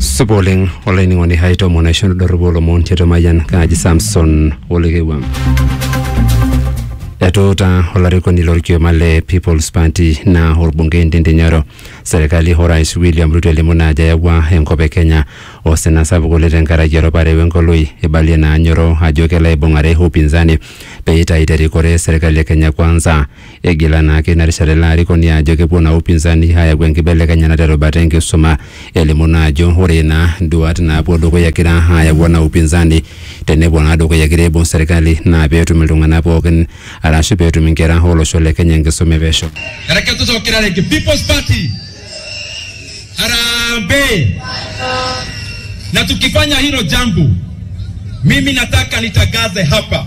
supa oleng olainining'oni hai tomon aisho nidorropu olomon tiatua mayian kaaji samson olekewua etuuta olarikoni lorkioma le peoples party naa orbungei Ndindi Nyoro serkali orais William Ruto elimu naa ajo eyawua enkop e Kenya osina sapuk oleng tenkaraki eropare wenkoloi ibalie naa Nyoro ajo kelo aibung'are upinzani pee eitayu terikore serkali e Kenya kwanza Egila naake ina rishata ilo arikoni ajo kepuo naa upinzani ayau enkibelekenyata te rubata enkisuma. Elimu naa ajo ore naa nduat naapuo dukuya egira ayau ena upinzani tenepuo naa dukuya egira aibung serkali naa peetum iltung'anak pookin arashu peetum inkera olosho le Kenya enkisuma e pesho. Ereketu Sokirareki People's Party. Harambee! Na tukifanya hilo jambo, mimi nataka nitangaze hapa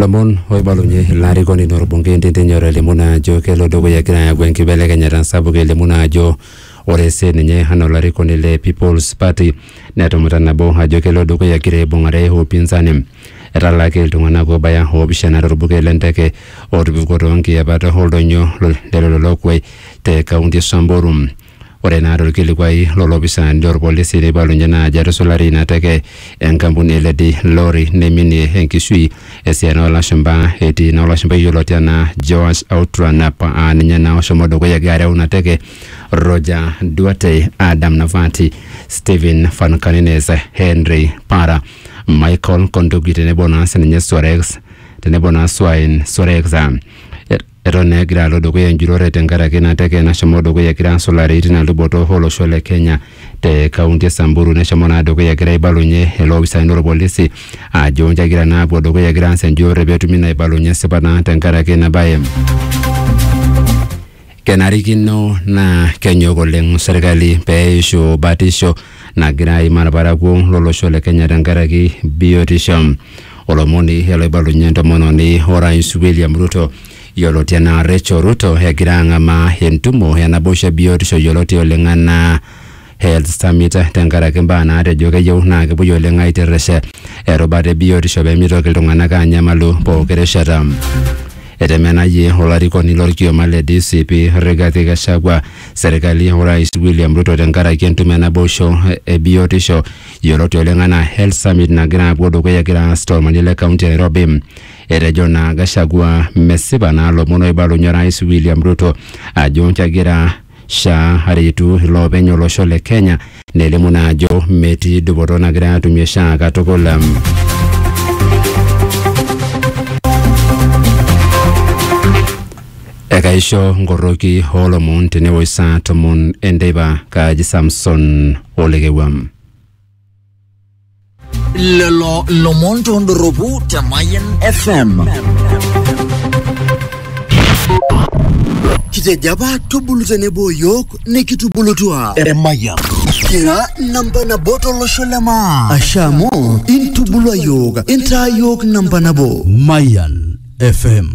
Lomon oibalunye ilo arikoni lorbungei Ndindi Nyoro elimu naa ajo kelo dukuya egira ayau enkibelekenyata sapuk elimu naa ajo ore sii ninye anaa olarikoni le People's Party netumuta nabo ajo kelo dukuya egira aibung'are upinzani. Etalaaki iltung'anak oobaya oopishana torbuket le nteke ootupukuo too nkiyapat oldonyo lelo lookuai te kaunti e Samburu. Ore naa tolkilikuai lolopisaani lolpolisi neibalunye naa ajo etusulari ina teke enkampuni e Lady Lorry neiminie enkishui esiana oolashumba etii ina olashumba yioloti anaa Joash Outranap aa ninye naa oshomo dukuya egira areu ina teke, Roger Duarte, Adam Navati, Stephen Van Canines, Henry Para, Michael Konduki tenebo naa sininye Sorex tenebo naa Swain Sorex. Eton naa egira alo dukuya enjurore tenkaraki ina teke nashomo dukuya egira asulari tina luboto olosho le Kenya te kaunti e Samburu neshomo naa dukuya egira aibalunye iloopisani lorpolisi ajo nji egira naa apuo dukuya egira aas enjurore petumi naa aibalunye esipa naa tenkaraki ina baye. Kenarikino naa kenyok oleng serkali peishu batisho nagira aimaa ilparakuo lolosho le Kenya tenkaraki biotisho. Olomoni ele oibalunye entomononi orais William Ruto yioloti anaa Rachel Ruto egira ang'amaa entumo e naboisho e biotisho yioloti oleng anaa Health Summit tenkaraki imbaa naatejo keyieu naa kepuoi oleng aitirrish erubata e biotisho pee mitoki iltung'anak aanyamalu pooki rishata. Etemenayie olarikoni lorkioma le DCP Rigathi Gachagua serkali orais William Ruto tenkaraki entumo enaboisho e biotisho yioloti oleng anaa Health Summit nagira apuo dukuya egira aas tolmanie le kaunti e Nairobi. Etejo naa Gachagua mesipa naa lomon oibalunye orais William Ruto ajo kegira SHA aretu iloopeny olosho le Kenya nelimu naa ajo metii dupoto nagira atumie SHA katukul. Ekaisho nkoroki oo lomon tenewoi saa tomon enteipa kaaji Samson Olekewuam. Lelo lomon tondorropu te Mayian FM. Kitejo apa tubulu tenebo yiok nikitubulutua. Emayian. Kira namba nabo tolosho le maa. Ashe amu intubulua yiok, intaa yiok namba nabo. Mayan FM.